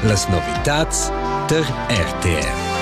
Las novitads tar RTR.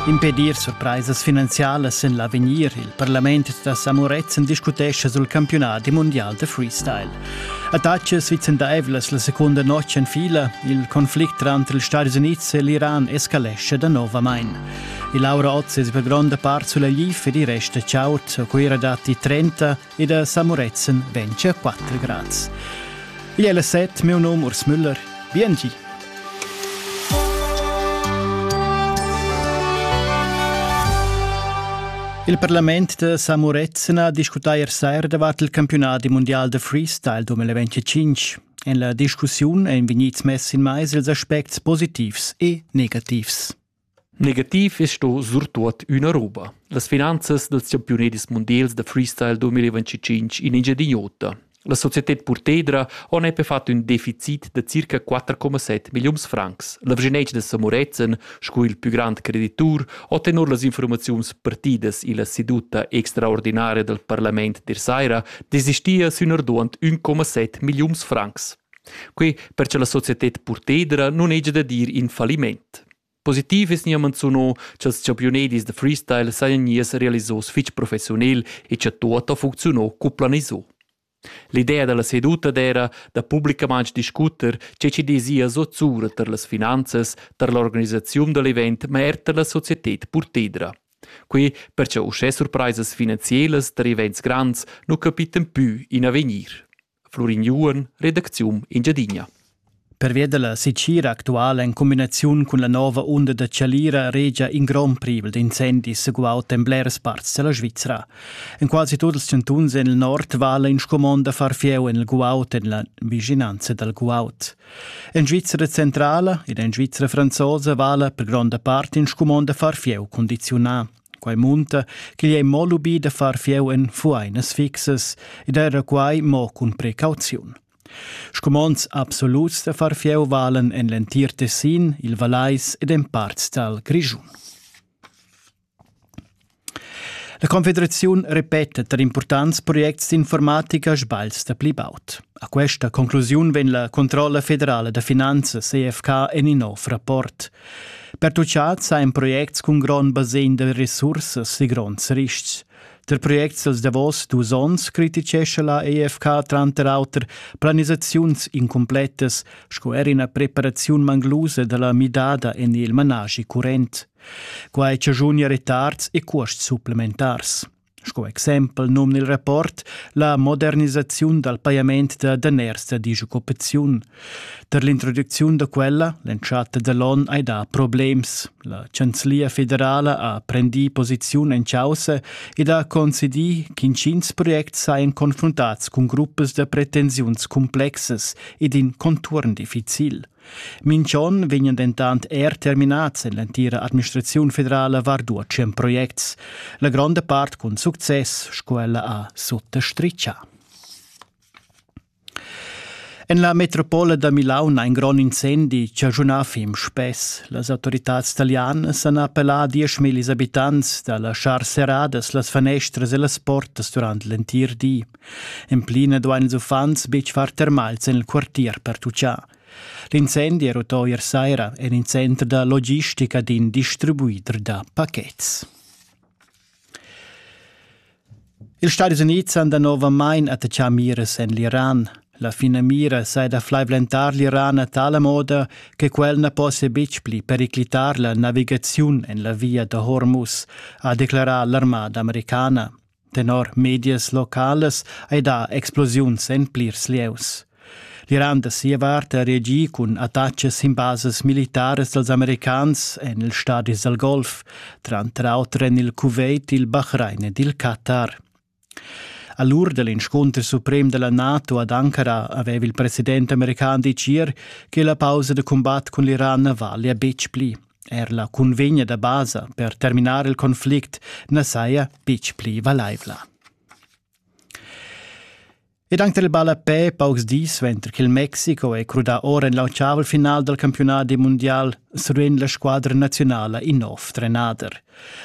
Impedir surpraisas finanzialas en l'avegnir. Il parlament da Samuretzen discutescha sul campiunadi mondial da freestyle. Attacas vicendaivlas la seconda notg en fila. Il conflict tranter ils Stati Unids e l'Iran escalesce da novamain. Il Laura Oz es per gronda part sulla GIF ed i resta chaud. A Cuira datti 30, e da Samuretzen ventia 4 grads. Igl è la set, meu nom Urs Müller. Biengi! Il parlament da Samuretzen ha discutà ier sera davart il campiunat mundial da freestyle 2025. En la discussiun èn vegnids mess in mais ils aspects positivs e negativs. Negativ es sto surtuot üna roba: las finanzas dals champiunedis mundials da freestyle 2025 in Engiadin'Ota. La societed Purtedra ho nepe fat ün deficit da circa 4,7 milliuns francs. La Vgenec da Samorezen, sco il pü grand creditur, ho tenor las infuormaziuns partidas illa seduta extraordinaria dal parlament der saira desistia sün arduond 1,7 milliuns francs. Quei per che la societed purtedra nun hegia da dir in falliment. Positiv es nia manzuno cha'ls champiunedis da freestyle sajan gnies realisos fich professionel e cha tuot ha funcziuno cu planiso. L'idea da la seduta d'era da publicamaints discuter che chi dezia zozzura tar las finanzas, tar l'organisaziun da l'event, ma er tar la societed purtedra. Quei per cha uschè surpraisas finanzielas tar events grands nu capiten pü in avegnir. Flurignuon, redacziun Engiadina. Pervia dalla secira actuala en cumbinaziun cun la nova unda da Chalira regia in grond privel d'incendis seguaut en blers parts della Svizra. En quasi tuts ils chantuns en il nord vala in scumond da far fieu en il guaut en la vicinanza dal guaut. En Svizzera centrala ed en Svizzera franzosa vala per gronda part in scumond da far fieu condizionà. Quai munta ch'igl è mo lubì da far fieu en fuainas fixas ed era quai mo cun precauziun. Scumonds absoluts da far fieu valen en l'entir Tessin, il Vallais ed en parts dal Grischun. La Confederaziun repeta tar impurtants projects d'informatica sbals da pli baud. A questa conclusiun vegn la Controlla federala da finanzas EFK en in nov rapport. Pertuchat sajan projects cun grond basegn da resursas e gronds ristgs. Tar projects dals davos dus onns criticescha la EFK tranter auter planisaziuns incumplettas sco er ina preparaziun manglusa da la midada en il managi current. Quai chaschunia retards e cuosts supplementars. Sco exempel nom nel rapport la modernisaziun dal pajament da daners da disoccupaziun. Per l'introducziun da quella, l'entschatta da l'on hai dà problems. La Chanzlia federala ha prendì posiziun en chaussa ed ha concedì ch'intgins projects sajan confruntats cun gruppas da pretensiuns cumplexas ed in conturn difficil. Minchon vegnan dentant er terminats en l'entira administraziun federala var dua tschient projects, la gronda part cun success sco ella ha suttostrichà. En la metropola da Milaun ha in grond incendi chaschunà fim spess. Las autoritads talianas han appellà a 10.000 abitants da laschar serradas las fanestras e las portas durant l'entir di. En pli na duain ils uffants betg far termals en il quartier per tutschar. L'incendi è rutò ier saira en in center da logistica d'in distribuider da pachets. Ils Stadis Unids han danovamain attachà miras en l'Iran. La finamira sai da flaivlentar l'Iran a tala moda che quel na possia betg pli periclitar la navigaziun en la via da Hormuz, ha declarà l'armada americana. Tenor medias localas ei dà explosiuns en plirs lieus. L'Iran da sia vart ha reagì cun attachas sin basas militaras dals americans en ils stadis dal Golf, tranter auter en il Kuwait, il Bahrain ed il Qatar. A l'ur da l'inscunter suprem da la NATO ad Ankara aveva il president american ditg ier che la pausa da cumbat cun l'Iran na valia betg pli. Er la cunvegna da basa per terminar il conflict na saja betg pli valaivla. Ed anche il ballapè paucs dis suenter che il Mexico è crudà ora en l'ottaval final dal campiunat mundial survegn la squadra nazionala in nov trenader.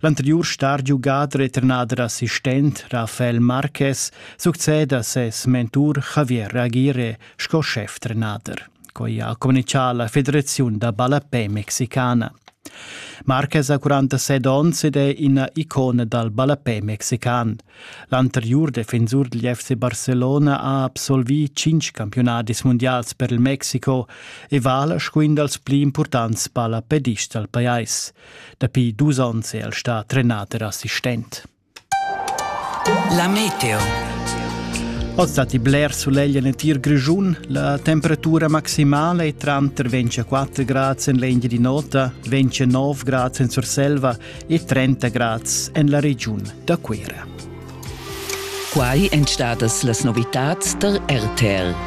L'anteriur star giugader e trenader assistent Rafael Marquez succeda ses mentur Javier Aguirre sco schef-trenader. Quai ha communitgà la Federaziun da ballapè mexicana. Marquez ha 47 onns ed è ina icona dal ballapè mexican. L'anteriur defensur degl FC Barcelona ha absolvì cinc campiunadis mundials per il Mexico e vala sco in dals pli impurtants ballapedists dal pajais. Dapi dus onns è el stà trenader assistent. La meteo. Oz datti bler sulegl en l'entir Grischun. La temperatura maximala è tranter 24 grads en l'Engiadin'Ota, 29 grads en Surselva e 30 grads en la regiun da Cuira. Quai èn stadas las novitads tar RTL.